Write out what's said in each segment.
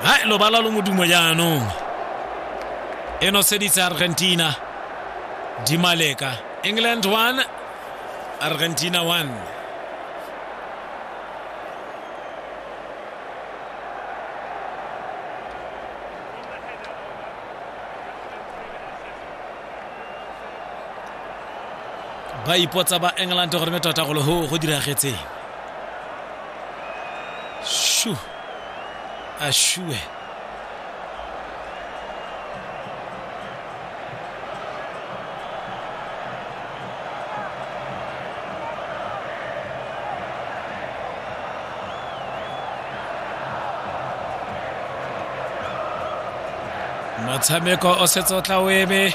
hai lobala lo modumo jaanong e noseditse argentina dimaleka england 1 argentina 1 ba ipotsa ba england gore me tota golo go diragetseng Shoo. Ashue. motshameko o setse o tla o eme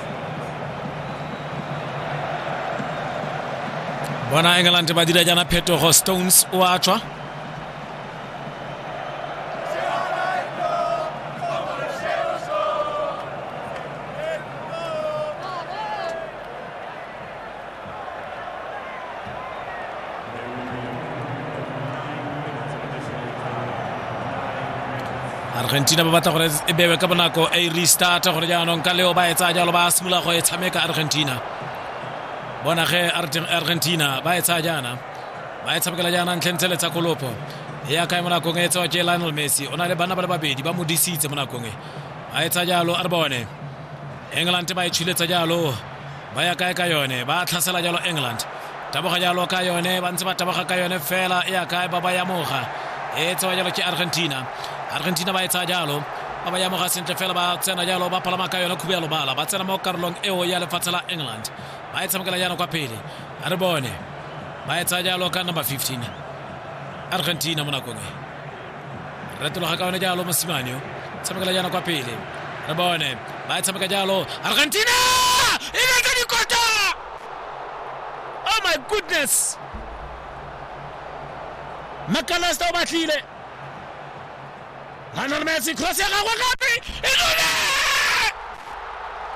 bona england ba dira jaana phetogo stones o a tswa argentina ba batla gore e bewe ka bonako a e restart gore jaanong ka leo ba e tsaya jalo ba simolola go e tshameka argentina bona ge argentina ba e tsaya jaana ba e tshamekela jaana ntlheng tse le tsa kolopo e ya kae mo nakong e tsewa ke lionel messi o na le bana ba le babedi ba mo disitse mo nakong e a e tsaya jalo a re bone england ba e tshuletsa jalo Ba ya kae ka yone? Ba tlhasela jalo England. Taboga jalo ka yone, ba ntse ba taboga ka yone fela. E ya kae? Ba ba yamoga. E tsewa jalo ke Argentina. Argentina ba e tsaya jalo ba ba yamoga sentle fela ba tsena jalo ba palama ka yone khubu ya lobala ba tsena mo karolong eo ya lefatshe la england ba e tshamekela jaana kwa pele a re bone ba e tsaya jalo ka number 15 argentina mo nakong e retologa ka one jalo mosimane o tshamekela jaana kwa pele re bone ba e tshameka jalo argentina e betse dikota oh my goodness makalesta o batlile lionel messi cross ya gagwe gape e dule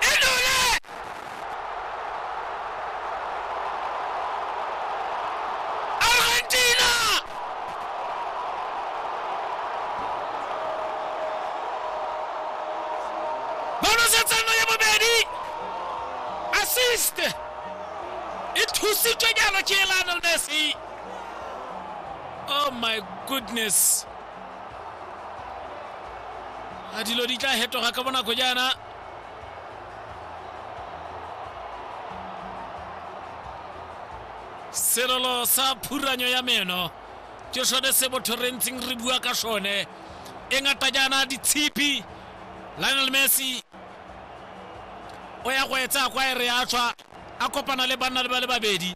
e dule Argentina! Ba nosetsa no ya bobedi. Assist. E thusitswe jalo ke Lionel Messi. Oh my goodness. A dilo di tla hetoga ka bonako jaana. selelo sa phuranyo ya meno ke sone se botho re ntseng re bua ka sone e ngata jaana ditshipi lionel messi o ya go etsa kwa e re a tswa a kopana le banna le ba le babedi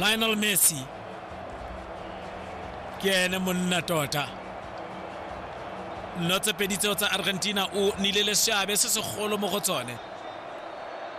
lionel messi ke ene monna tota nno tse pedi tseo tsa argentina o nile le seabe se segolo mo go tsone